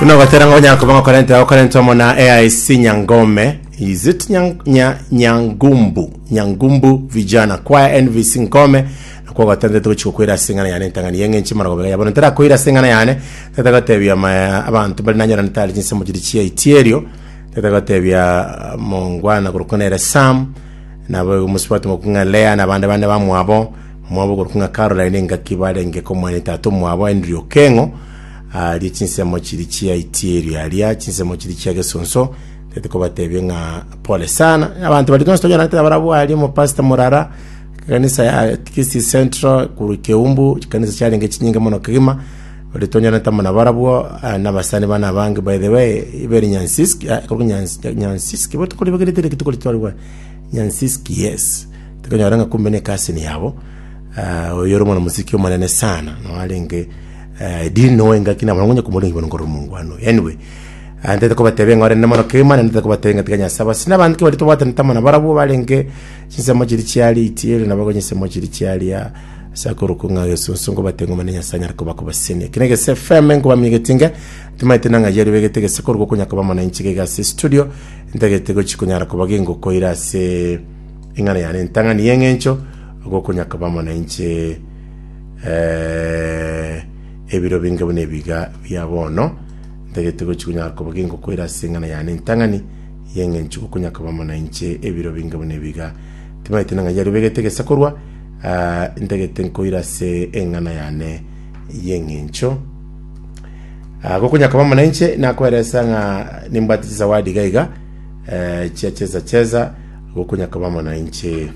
Buna ogotera ng'a onyara koba ng'okorente okorente omo na AIC Nyangome. Is it nyang, nya, Nyangumbu? Nyangumbu vijana kwaya NVC Nkome nakwo ogotentete gochia gokwera ase eng'ana yane entang'ani yeng'enche mara gobega yabono ntara koira ase eng'ana yane tete gotebia ma abanto bari nanyorane tari chinsemo chiri chia itierio tete gotebia mongwana korokwa nere Sam nabo mosubati mokung'a Lea na bande bane bamwabo Omwabo oborokigwa ng'a Caroline engaki barenge komwania tatomwabo Henry Okeng'o aria chinsemo chiri chiaitie erio aria chinsemo chiri chia gesonso tete kobatebia ng'a pole sana abanto bari tonsi tonyoranete abarabwo aria omopastor morara kanisa ya Kisii Central kuru Keumbu chikanisa chiarenge chinyinge mono kegima bari tonyoranete amo nabarabwo ah, nabasani bana abange by the way ibere Nyansiski ah, korwa Nyans- Nyansiski botuko ribagerete rituko ritwari bwa Nyansiski yes Tikonyora ng'a kumbe ne cousin yabo, eh, oyore omwana mosike omonene sana, noe arenge eh, edini noe engaki nabo nonye komorengi bono nkorora omongwano. Anyway, ah, ntete kobatebia ng'a orende mono kegima naende ntete kobatebia ng'a tiga Nyasae basi n'abande kebari tobwatanete amo nabarabwo barenge chinsemo chiri chiaria itiere nabo chinsemo chiri chiaria ase akorokwa ng'a gesusu ngobatebia ng'a Omonene Nyasae anyare koba kobasenia. Ekio negese FM nkobamiegeti inga timaete nang'a yari begete gese korwa okonya koba mona inche gaiga ase studio ntagete gochi konyara koba gengokoira ase Ing'ana yane entang'ani y'engencho gokonya koba amo nainche ebiro binge buna ebiga bia bono, ntagete gochia konyara koba gengokoira ase eng'ana yane entang'ani y'engencho gokonya koba amo nainche ebiro binge buna ebiga. Timanyete ning'ai yarubegete egesakorwa, ntagete nkoire ase eng'ana yane y'engencho. Gokonya koba amo nainche nakoeresa ng'a nimbwate chisawadi iga iga. chia chesa chesa gokonyaka koba amo nainche.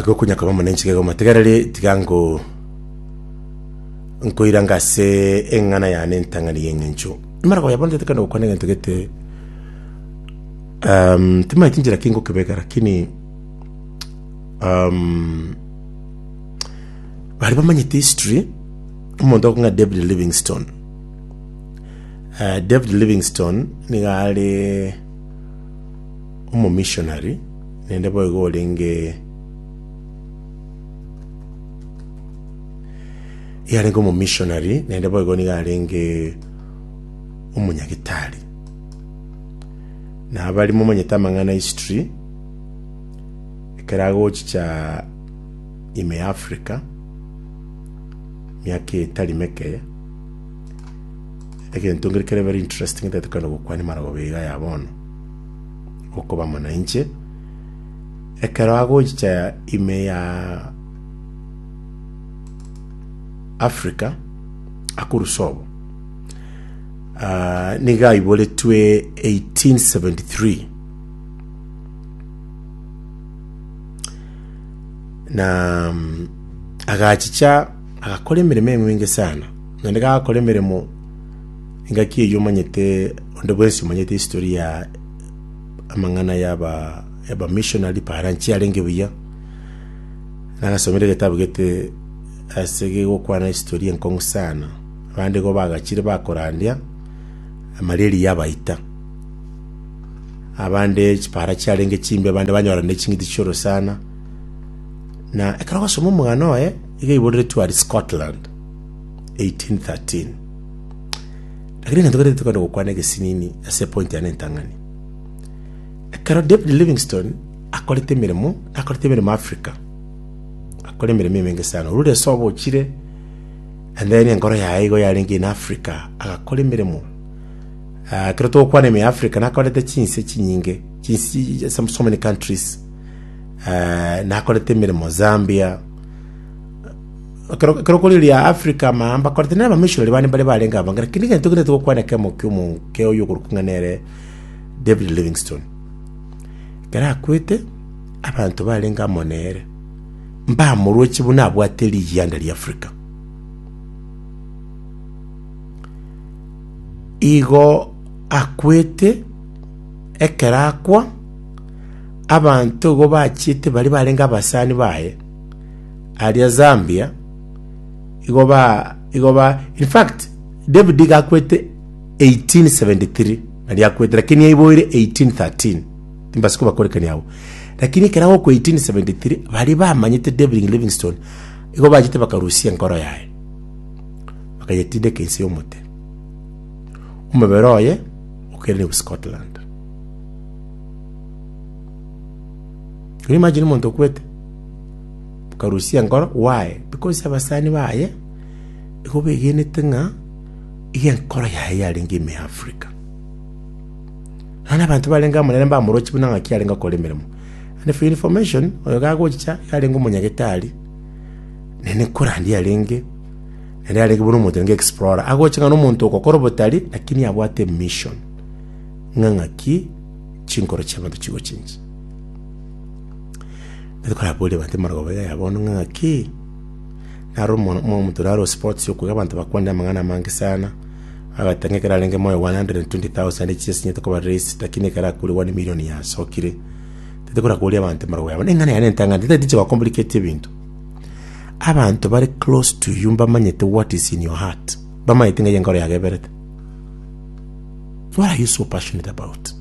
Gokonyaka koba amo nainche gego matigareri tiga ngo nkoira ngase eng'ana yane entang'ani y'eng'encho. Imara koya bono tetekana gokwana egento gete um, timaeti njira ki ngokebeka lakini Baria bamanyete history, omonto okong'a David Livingstone. David Livingstone nigo are omomissionary naende boigo orenge yarenge omomissionary naende boigo nigo arenge omonyagitari. Na baria momanyete amang'ana history. Ekero agochicha ime ya Africa, miaka etari meke, egento nkere kere very interesting ntaete kogenda gokwania amarababo iga ya bono, okoba mwanainche. Ekero agochicha ime ya Africa, akorusia obo, nigo aiboretwe eighteen seventy three. na mm, agachicha agakora emeremo eng'winge sana naende gagakora emeremo engaki eyio omanyete onde bwensi omanyete history ya amang'ana yaba yaba missionary para nchi arenge buya nagasomire egetabu gete ase gegokwana historia enkong'u sana abande igo bagachire bakorandia amareri yabaita abande chipaara chiarenge chimbe, abande banyora ne ching'iti chi'orosana. Na ekero ogosoma omogano oye, iga iboreretwe aria Scotland, 1813. Lakini egento kere tokwenda gokwana egesinini ase epointi yane entang'ani. Ekero David Livingstone akorete emeremo, akorete emeremo Africa, akora emeremo emenge sana. Orure ase obochire, and then enkoro yaye igo yarenge in Africa, agakora emeremo. Ekero togokwana ime ya Africa nakorete chinse chinyinge, chinse so many countries. Nakorete emeremo Zambia, ekero okorigereria Africa amaya mbakorete nere abamissionary bane mbare barenge abwo ngaki kende egento kende togokwana ekemo kia omonke oyo okorokwa ng'a nere David Livingstone. Ekero akwete, abanto barenge amo nere mbamorochi buna abwate riganda ria Africa. Igo akwete, ekero akwa, abanto igo bachiete baria barenge abasani baye, aria Zambia, igo ba igo ba in fact, David iga akwete 1873 naria akwete lakini yaiboire 1813, timbasie kobakorekania abwo. Lakini ekero agokwa 1873, baria bamanyete David Livingstone, igo bachiete bakarusia enkoro yaye. bakayetindeka inse y'omote. Omobere oye okerenigwe Scotland. Can you imagine omonto okwete? Bakarusia enkoro, why? Because abasani baye igo begenete ng'a iga enkoro yaye yarenge ime ya Africa. None abanto barenge amo nere mbamorochi buna ng'aki arenge okora emeremo. And for your information, oyo gagochicha iga arenge omonyagitari, nene nkorandi yarenge Ere arege buna omonto nge explorer agoche ng'a nomonto ogokora obotari lakini abwate mission ng'a ng'aki chinkoro chiabanto chigochincha. Nabo koraboria abanto amarogoba iga ya bono ng'a ng'aki naro omono- mo- omonto naro sports yo koiga abanto bakwanire amang'ana amange sana, agoteba ng'a ekero arenge moyo 120,000 echi asinyete koba raised lakini ekero akwire one million yasokire. Tete korakoria abanto amarogo yabo, neng'ana yaye nentang'ani, tari inche ba complicate ebinto. Abanto bare close to you mbamanyete what is in your heart. Bamanyete ng'ai enkoro yago eberete. What are you so passionate about?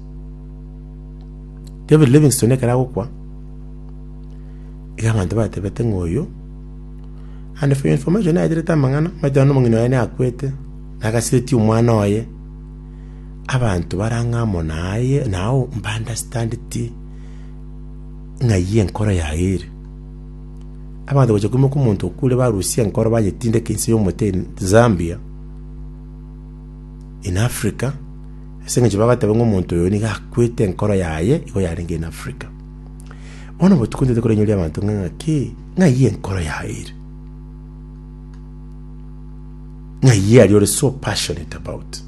David Livingstone ekero agokwa, iga abanto batebete ng'oyo and for your information naeterete amang'ana maete nonye omong'ina oye nakwete nagasiretie omwana oye abanto barang'a amo naye nao mba understand ti ng'ai enkoro yaye ere Abanto bachia koimoka omonto okure barusia enkoro bayetindeka inse y'omote Zambia in Africa ase eng'encho bagateba ng'a omonto oyo nigo akwete enkoro yaye igo yarenge in Africa. Bono botuko ntete korainyora abanto ng'a ng'aki ng'ai enkoro yaye ere? Ng'ai aria ore so passionate about?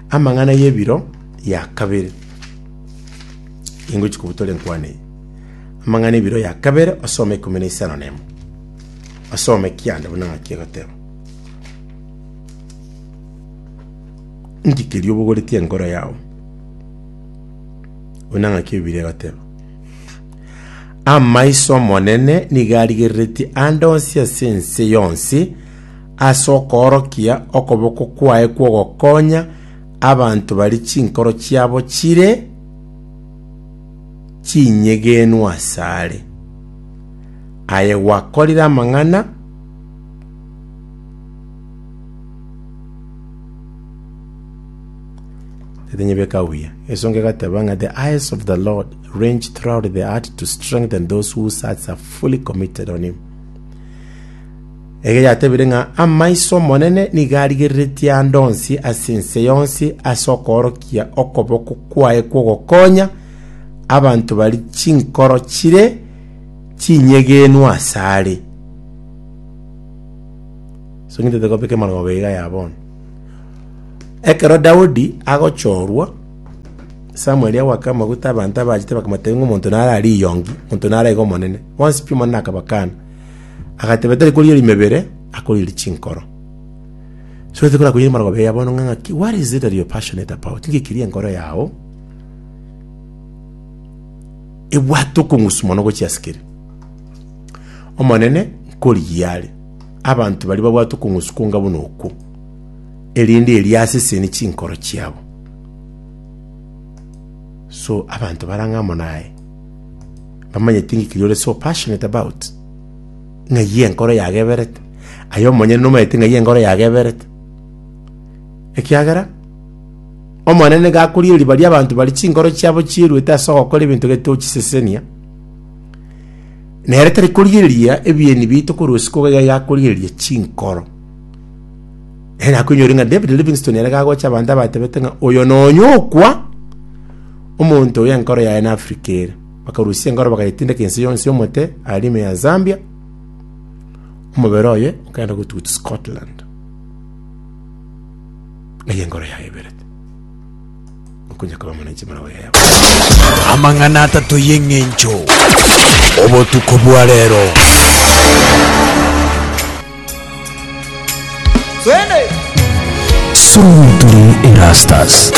Amang'ana y'ebiro ya kabere. Ingochia kobutora enkwana eye. Amang'ana ebiro ya kabere osome ikomi na isano nemo. Osome kianda buna ng'aki egoteba. Inki keria obogoretie enkoro yao? Buna ng'aki ebiri egoteba. Amaiso Omonene nigo arigereretie ande onsi ase ense yonsi ase okoorokia okoboko kwaye kw'ogokonya abanto baria chinkoro chiabo chire chinyegenwa asare. Aye gwakorire amang'ana Tatinyebeka buya. Esongo egateba ng'a the eyes of the Lord range throughout the earth to strengthen those whose hearts are fully committed on him. Ege yatebire ng'a amaiso 'Omonene nigo arigereretie aande onsi ase ense yonsi ase okoorokia okoboko kwaye kw'ogokonya abanto baria chinkoro chire chinyegenwa asare. Ekero Daudi agochorwa, Samueli agoaka amaguta, abanto abachete bakamotebia ng'a omonto nare ariyongi, omonto nare aiga omonene. Bonsi pi Omonene akabakana. Agateba, Tari korigia rimebere, akorigia richinkoro. So ase korakorigia rimarogoba eria bono ng'a ng'aki, what is it that you're passionate about? Inki ekiria enkoro yao ebwate okong'usu mono gochia ase kere? Omonene, nkorigia are. Abanto baria babwate okong'usu konga buna okwo, erinde eria asesenie chinkoro chiabo. So abanto bare ang'e amo naye. Bamanyeti inki keria ore so passionate about? Ng'ai enkoro yageberete? Aye omonyene nomanyete ng'ai enkoro yageberete? Ekiagera Omonene nigo akoria eriba ri'abanto baria chinkoro chiabo chieruete ase ogokora ebinto getochisesenia, na ere tari korigereria ebieni biaito korwa isiko iga iga akorigereria chinkoro. Ere akoinyore ng'a David Livingstone ere gagocha abanto abatebete ng'a oyo nonya okwa omonto oyo enkoro yaye na Africa ere. Bakarusia enkoro bakayetindeka ense yonsi y'omote aria ime ya Zambia. Omobere oye okaenda gotugut Scotland. Ng'ai enkoro yaye eberete. Okonya koba mono inche morogo yaye abana. Amang'ana atato y'eng'encho obotuko bwa rero. Twende! Solo tuli Erastus.